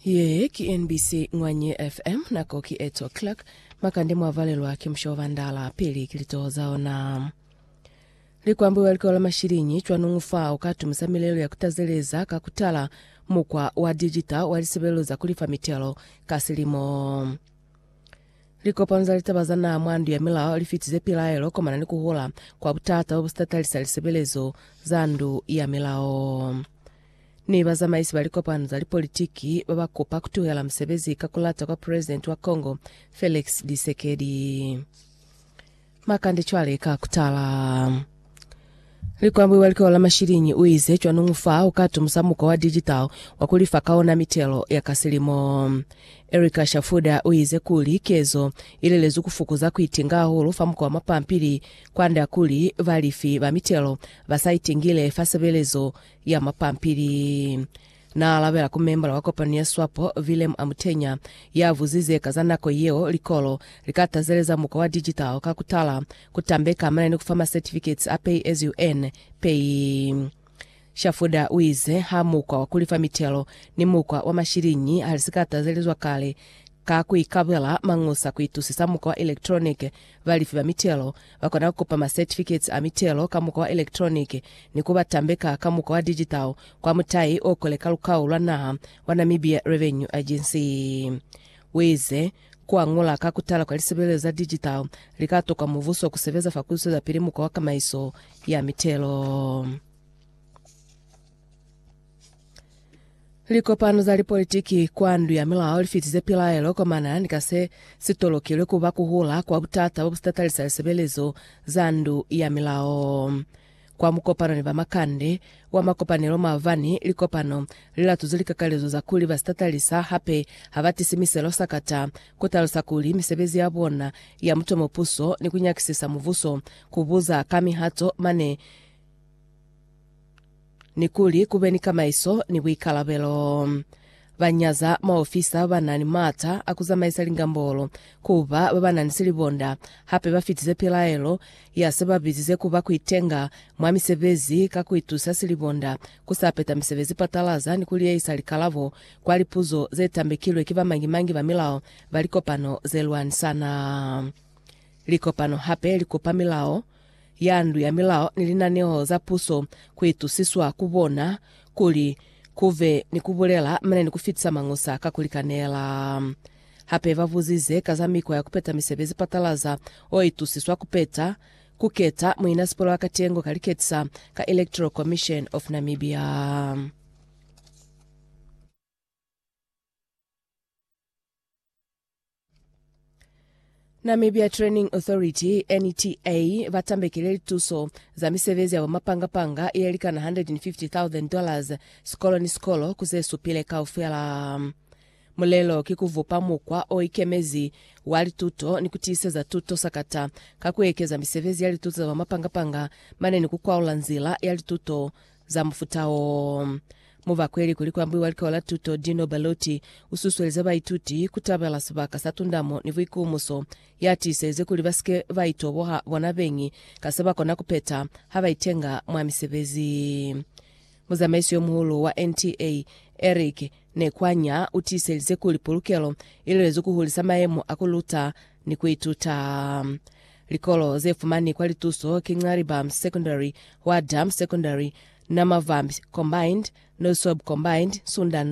Ye ki NBC Ngwanye FM, nako ki 8 o'clock. Makande mwa valelwa ki musha wa bandala, pili ki litoho za ona. Likwambo wa likolo la mashilinyi cwanungu fa u ka tumusa milelo ya ku tazeleza ka ku tala mukwa wa dijita wa lisebelelo za ku lifa mitelo ka silimo. Likopano za litaba za naha mwa ndu ya milao li fitize pilaelo komana ni ku hula kwa butata bo bu si tatalisa lisebelezo za ndu ya milao. ni bazamaisi ba likopano za lipolitiki ba ba kupa ku tuhela musebezi ka ku lata kwa Presidenti wa Congo Felix Tshisekedi. Makande cwale ka ku tala. Likwambwi wa likolo la Mashilinyi u ize cwanungu fa u ka tumusa mukwa wa digital wa ku lifa ka ona mitelo ya ka silimo. Erica Shafuda u ize kuli kezo i lelezwi ku fukuza ku itinga hahulu fa mukwa wa mapampili kwand'a kuli balifi ba mitelo ba sa itingile fa sebelezo ya mapampili. Na alabela ku membala wa kopano ya Swapo, Willem Amutenya, ya vuzize ka za nako yeo likolo li ka tazeleza mukwa wa digital ka ku tala ku tambeka hamana ni ku fa ma certificates a pay as you earn, pay. Shafuda u ize ha mukwa wa ku lifa mitelo ni mukwa wa mashiliñi ha li si ka tazelezwa kale ka ku ikabela mañusa ku itusisa mukwa wa electronic, balifi ba mitelo Ba kona ku kupa ma certificates a mitelo ka mukwa wa electronic ni ku ba tambeka ka mukwa wa digital kwa mutai o kole ka lukau lwa naha wa Namibia Revenue Agency. Uize, Ku añula ka ku tala kwa lisebelezo za digital li ka tokwa mubuso ku sebeza fa ku zwezapili mukwa wa kamaiso ya mitelo. Likopano za lipolitiki kwa ndu ya milao li fitize pilaelo kwa manana ni ka se si tolokilwe ku ba ku hula kwa butata bo bu sitatalisa lisebelezo za ndu ya milao. Kwa mukopano ni bamakande wa makopanelo maabani, likopano li latuze likakalezo za kuli ba sitatalisa hape ha ba tisi miselo sakata, ku talusa kuli misebezi ya bona ya mutomo puso ni ku nyakisisa mubuso ku buza ka mihato mane ni kuli ku be ni kamaiso ni buikalabelo. Ba nyaza maofisa ba ba na ni maata a ku zamaisa lingambolo ku ba ba ba na ni silibonda, hape ba fitize pilaelo ya se ba bizize ku ba ku itenga mwa misebezi ka ku itusa silibonda ku sa peta misebezi patalaza ni ku liyeyisa likalabo kwa lipuzo ze tambekilwe ki bamañi-mañi ba milao ba likopano ze lwanisana. Likopano hape li kopa milao ya ndu ya milao ni linaneo za puso ku itusiswa ku bona kuli ku be ni ku bulela mane ni ku fitisa mañusa ka ku likanela. Hape ba buzize ka za mikwa ya ku peta misebezi patalaza o itusiswa ku peta ku keta muinasipolo wa katengo ka liketisa ka Electoral Commission of Namibia. Namibia Training Authority, NTA, ba tambekile lituso za misebezi ya bomapanga-panga ye likana $150,000 sikolo ni sikolo ku ze supile kaufela. Mulelo ki ku vupa mukwa o ikemezi wa lituto ni ku tiiseza tuto sakata ka ku ekeza misebezi ya lituto za bomapanga-panga mane ni ku kwaula nzila ya lituto za mufuta oo. Mu bakweli kuli ku ambiwa likao la tuto, Dino Ballotti u susuelize baituti ku tabela sibaka sa tundamo ni buikumuso. Ya tiiselize kuli ba si ke ba itoboha bona beñi ka se ba kona ku peta ha ba itenga mwa misebezi. Muzamaisi yo muhulu wa NTA, Eric Nekwanya, u tiiselize kuli pulukelo i lwezi ku hulisa mayemo a ku luta ni ku ituta. Likolo ze fumani kwa lituso ki Nxaribam Secondary, Hwa Dam Secondary, Namavambi Combined, Noisweb Combined, Sunda North,